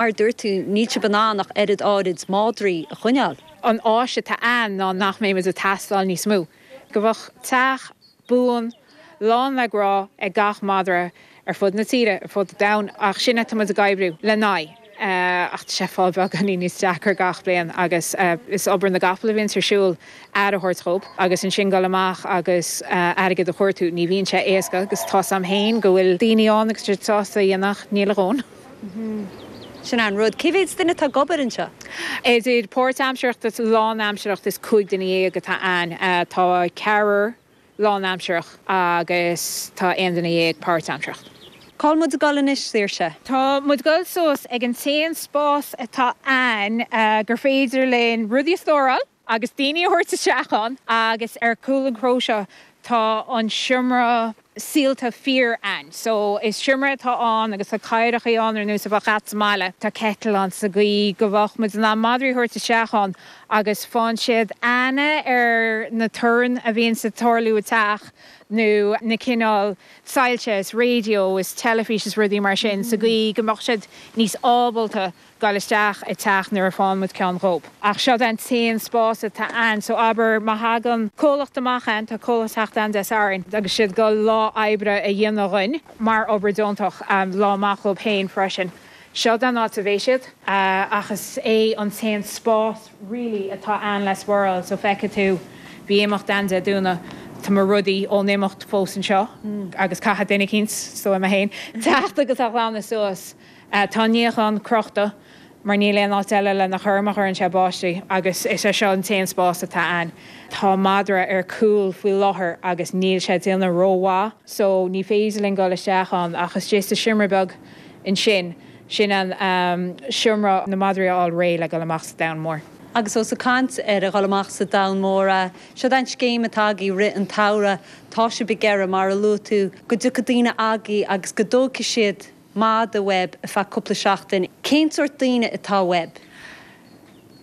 Mar dúirt tú, níl sibh in ann ach oiread áirid mádraí a choinneáil. An aidhm atá ann ná nach mbeimid ag teastáil níos mó. Go mbeadh teach buan, lán le grá ag gach madra ar fud na tíre, ar fud an domhain. Ach sin é, táimid ag oibriú lena aghaidh. Ach tá sé ag fáil beagáinín níos deacra gach bliain agus is obair na gcapall a bhíonns ar siúl, aire a thabhairt dhóib agus ansin dul amach agus airgead a chuartú. Ní bhíonn sé éasca agus tá's agam féin go bhfuil daoine ann agus iad sásta é a dhéanamh ach níl a ndóthain. Sin an rud. Cé mhéid duine atá ag obair anseo? Idir páirt-aimseartha is lánaimseartha is cúig duine dhéag atá ann. Tá ceathrar lánaimseartha agus tá aon duine dhéag páirt-aimseartha. Cá bhfuil muid ag dul anois, Saoirse? Tá muid ag dul suas ag an t-aon spás atá ann gur féidir linn rudaí a stóráil. agus daoine a thabhairt isteach ann agus ar chúl an chró seo tá an seomra saolta fíor againn so is seomra atá ann agus tá cathaoireacha ann ar nós a bheadh agat sa mbaile. Tá kettle ann sa gcaoi go mbeadh muid in ann madraí a thabhairt isteach ann agus faigheann siad aithne ar na torainn a bhíonns ag tarlú i teach nó na cineál soilse is radio is teilifís is rudaí mar sin sa gcaoi go mbeadh siad níos ábalta Dul isteach i dteach nuair a fhaigheann muid ceann dhóib. Ach seod é an t-aon spás atá ann, so abair má thagann comhlacht amach ann, tá comhlacht ag teacht ann Dé Sathairn, agus tá siad ag goil lá oibre a dhéanamh dhúinn mar obair deontach, lá amach dhóib féin freisin. Seod é an áit a bheidh siad. Ach is é an t-aon spás really atá ann le spáráil, so feicfidh tú, bhí imeacht ann Dé Domhnaigh, tá mo rudaí ón imeacht fós anseo, agus caithfidh duine eicínt, sé sin mé féin, teacht agus a ghlanadh suas. Á, tá an níochán crochta mar níl aon áit eile lena chur má chuireann sé báistí agus is é seo an t-aon spás atá ann. Tá madra ar chúl faoi láthair agus níl sé ag déanamh ró-mhaith so ní féidir linn dul isteach ann ach istigh sa seomra beag ansin, sin an seomra leis na madraí a fháil réidh le dhul amach sa domhan mór. Agus ós ag caint ar a dhul amach sa domhan mór, seo'd é an scéim atá agaibh i rith an tsamhraidh, tá sibh ag iarraidh, mar a luaigh tú, go dtiocfaidh daoine agaibh agus go dtóigfidh siad madra uaibh ar feadh cúpla seachtain. Cén sórt daoine atá uaibh?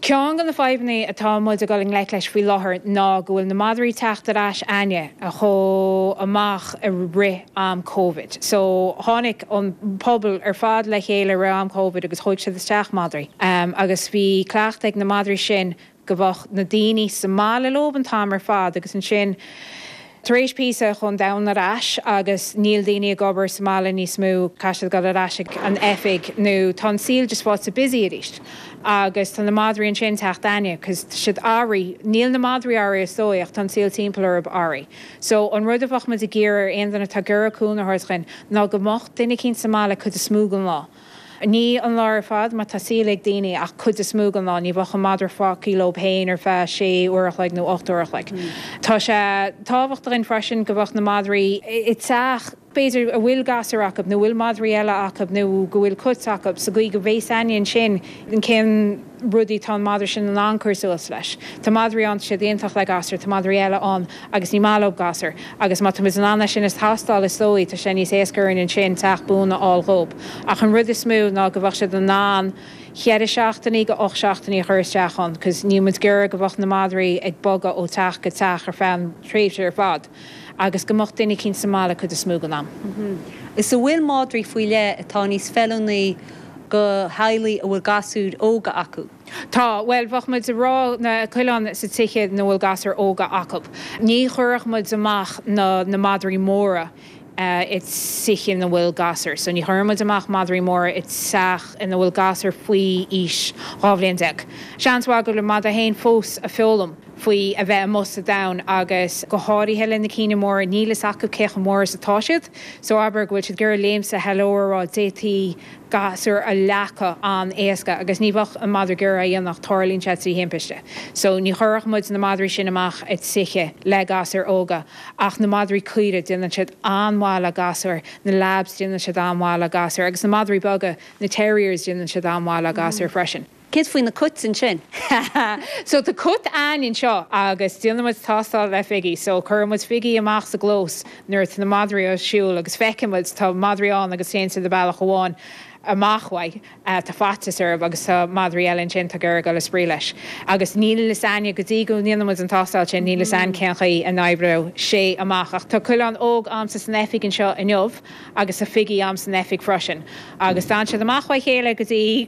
Ceann de na fadhbanna atá muid ag dul i ngleic leis faoi láthair ná go bhfuil na madraí ag teacht ar ais againn a chuaigh amach i rith an Covid. So tháinig an pobal ar fad le chéile i rith an Covid agus thóig siad isteach madraí agus bhí cleachtadh ag na madraí sin Go mbeadh na daoine sa mbaile leob an t-am ar fad agus ansin tar éis píosa chuaigh an domhan ar ais agus níl daoine ag obair sa mbaile níos mó. Caithfidh siad a ghoil ar ais ag an oifig nó tá an saol just faighte busy arís agus tá na madraí ansin ag teacht againn 'cause tá siad athraithe. Níl na madraí athraithe is dóigh ach tá an saol timpeall orthab athraithe. So an rud a bheadh muid ag iarraidh ar aon duine atá ag iarraidh cúnamh a thabhairt dhuinn ná go mbeadh duine eicínt sa mbaile an chuid is mó den lá. Ní an lá ar fad, má tá saol ag daoine, ach an chuid is mó den lá. Ní bheadh an madra fágthaí leob féin ar feadh sé uair a chloig nó ocht uair a chloig. Tá sé tábhachtach againn freisin go mbeadh na madraí i dteach, b'fhéidir, a bhfuil gasúir acu nó a bhfuil madraí eile acu nó go bhfuil cuit acu, sa gcaoi go mbeidh a fhios againn ansin cén rudaí atá an madra sin in ann cur suas leis. Tá madraí ann tá siad iontach le gasúir, tá madraí eile ann agus ní maith leob gasúir agus má tá muid in ann é sin a thástáil is dóigh tá sé níos éasca orainn ansin teach buan a fháil dhób ach an rud is mó ná go mbeadh siad in ann cheithre seachtainí go ocht seachtainí a chur isteach ann cause níl muid ag iarraidh go mbeadh na madraí ag bogadh ó teach go teach ar feadh an tréimhse ar fad. agus go mbeadh duine eicínt sa mbaile an chuid is mó den am. Is a bhfuil madraí faoi leith atá níos feiliúnaí do theaghlaigh a bhfuil gasúir óga acu. Tá, bhuel, bheadh muid ag rá na coileáin sna tithe ina bhfuil gasúir óga acub. Ní chuirfeadh muid amach na na madraí móra i dtithe ina bhfuil gasúir. So ní chuireann muid amach madraí móra i dteach ina bhfuil gasúir faoi aois dhá bhliain déag. Seans maith go bhfuil an madadh fhéin fós ag foghlaim. faoi a bheith amuigh sa domhan agus go háirithe le na cinn móra níl a fhios acu cé chomh mór is atá siad so abair go bhfuil siad ag iarraidh léim suas hello a rá d'fhéadfaí gasúr a leagadh an-éasca agus ní bheadh an madra ag iarraidh é a dhéanamh ach tarlaíonn sé trí thimpiste so ní chuirfeadh muid na madraí sin amach ag tithe le gasúir óga ach na madraí caorach déanann siad an-mhaith le gasúir na labs déanann siad an-mhaith le gasúir agus na madraí beaga na terriers déanann siad an-mhaith le gasúir freisin. Céard faoi na cuit ansin? Ha ha! So tá cat againn anseo agus déanann muid tástáil le figí. So cuireann muid figí amach sa gclós nuair atá na madraí ar siúl agus feiceann muid tá madraí ann agus téann siad le bealach amháin amach uaidh, tá faitíos orthu agus tá madraí eile ansin atá ag iarraidh dul ag spraoi leis. Agus níl a fhios againne go dtí go ndéanann muid an tástáil sin níl a fhios againne cén chaoi a n-oibreodh sé amach ach tá coileán óg a'msa san oifig anseo inniu agus tá figí a'm san oifig freisin agus d'fhan siad amach óna chéile go dtí